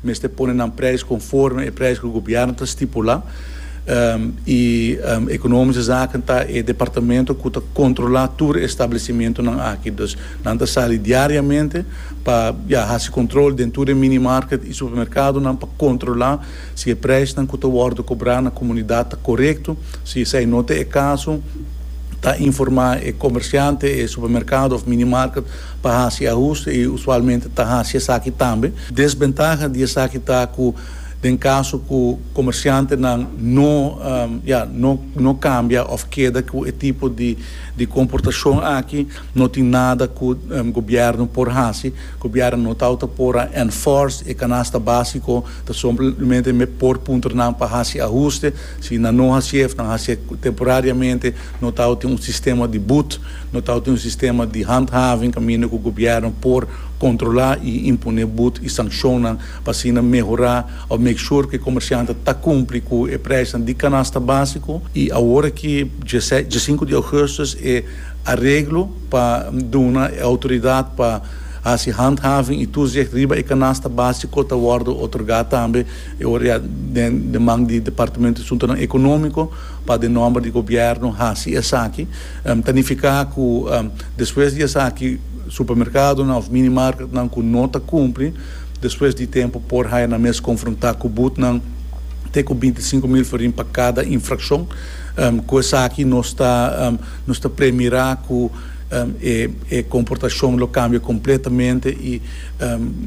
Mester pone nan prijs conforme e prijs cu gobierno ta stipula y Economische Zaken ta e departamento cu ta controla tur e establecimentonan aki. Dus nan ta sali diariamente pa ya haci control den tur e minimarket y supermercadonan pa controla si e prijsnan cu ta wordo cobra na comunidad ta corecto. Si esai no ta e caso ta informa e comerciante, e supermercado of minimarket pa haci ahuste y usualmente ta haci esaki tambe. Desbentaha di esaki ta ku den kaso ku komersiantenan no ya no no kambia òf keda ku e tipo di di komportashon aki no tin nada ku gobièrnu por hasi, gobièrnu no tau ta por a enforce e kanasta básiko, ta somplemente me por puntra nan pa hasi ahuste, si nan no hasié òf nan hasié temporariamente, no tau tin un sistema di but, no tau tin un sistema di handhaving kaminda ku gobièrnu por. Controla y impone bud y sanccionnan pa asina mehora of make sure cu e comercianten ta cumpli cu e prijsnan di canasta basico. Y awor aki dje djecinco di augustus e areglo pa duna e autoridad pa haci handhaving y toezicht riba e canasta basico ta wordo otorga tambe e ora ya den den man di Departamento di Asuntonan Economico pa den nomber di Gobierno haci esaki ta nifica cu despues di esaki Supermerkadonan òf mini marketnan ku no ta kumpli, despues di tempu por haya nan mes konfrontá ku butnan te ku binti sinku mil forin pa kada infrakshon. Ku esaki nos ta nos ta premirá ku e komportashon lo kambia kompletamente i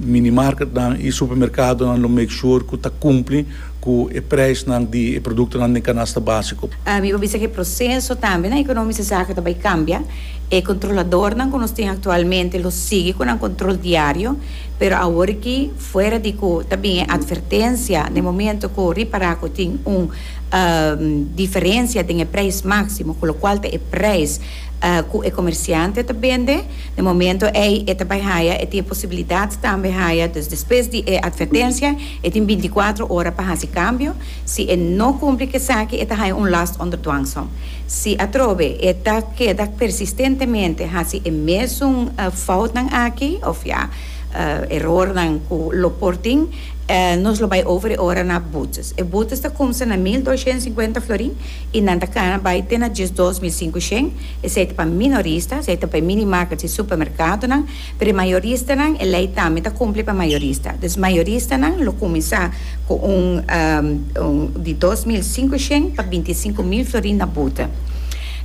mini marketnan i supermerkadonan lo make shur ku ta kumpli. Cu e prijsnan di e productonan den canasta basico. Mi por bisa cu e proceso tambe na economice zaken ta bay cambia. E controladornan cu nos tin actualmente lo sigui cu nan control diario, pero awor aki fuera di cu ta bin e advertencia na e momento cu ripara cu tin un diferencia den e prijs maximo cu locual ta e prijs cu e comerciante ta bende, na e momento ey e ta bay haya, e tin e posibilidad tambe haya, dus despues di e advertencia. E tin binticuatro ora pa haci cambio. Si e no cumpli cu esaki e ta haya un last onder dwangsom. Si atrobe e ta keda persistentemente haci e mesun foutnan aki, of ya, erornan cu lo por tin, nos lo bay over e ora na boetes. E boetes ta cumsa na mil doscientos cincuenta florin y nan ta cana bay te na diesdos mil cincucientos. Esey ta pa minoristas, esey ta pa e mini-markets y supermercadonan. Pero e mayoristanan, e lei tambe ta kumpli pa mayorista. Dus mayoristanan lo kuminsá ku un un di dos mil sinku shen pa binti sinku mil florin na bute.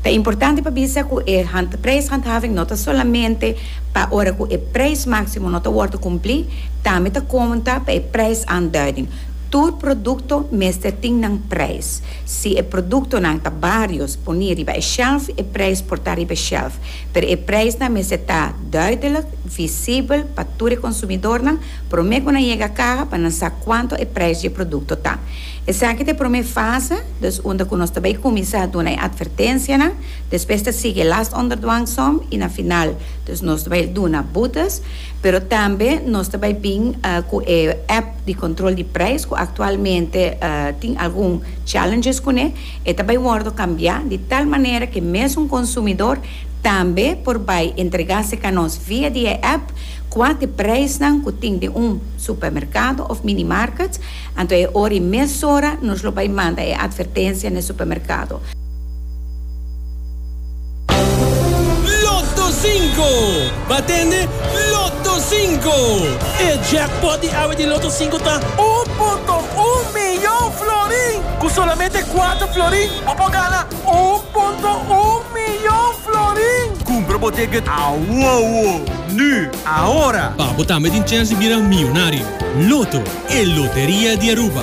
Ta importante pa bisa ku e hand prijshandhaving no ta solamente pa ora ku e prijs máksimo no ta wòrdu kumplí, tambe ta konta pa e prijsaanduiding. Tur produkto mester tin nan prijs. Si e produktonan ta barios poní riba e shèlf, e prijs por ta riba e shèlf. Pero e preisnan mester ta duidelijk, visibel pa tur e konsumidornan promé ku nan yega kaha pa nan sa kuantu e preis di e produkto ta. Esaki ta e promé fase, dus unda ku nos ta bai kuminsá duna e atvertensianan, despues ta sigui e last onder dwangsom i na final dus nos ta bai duna butas. Pero tambe nos ta bai bin ku e app di kontrol di preis ku aktualmente tin algun challenges kuné. E ta bai wòrdu kambiá di tal manera ku mes un konsumidor tambe por bai entregá se kanos via di e app kua te preisnan ku tin den un supermerkado òf minimarket, anto e ora i mesora nos lo bai manda e atvertensia na e supermerkado. Lotto Cinco! Bo a tende? Lotto Cinco! E jackpot di awe di Lotto Cinco ta un punto un miyon florin! Ku solamente kuater florin bo por gana un punto un miyon florin! Kumpra bo ticket awowo! Nu! Ahora! Pa bo tambe tin chèns di bira miyonario! Lotto, e loteria di Aruba!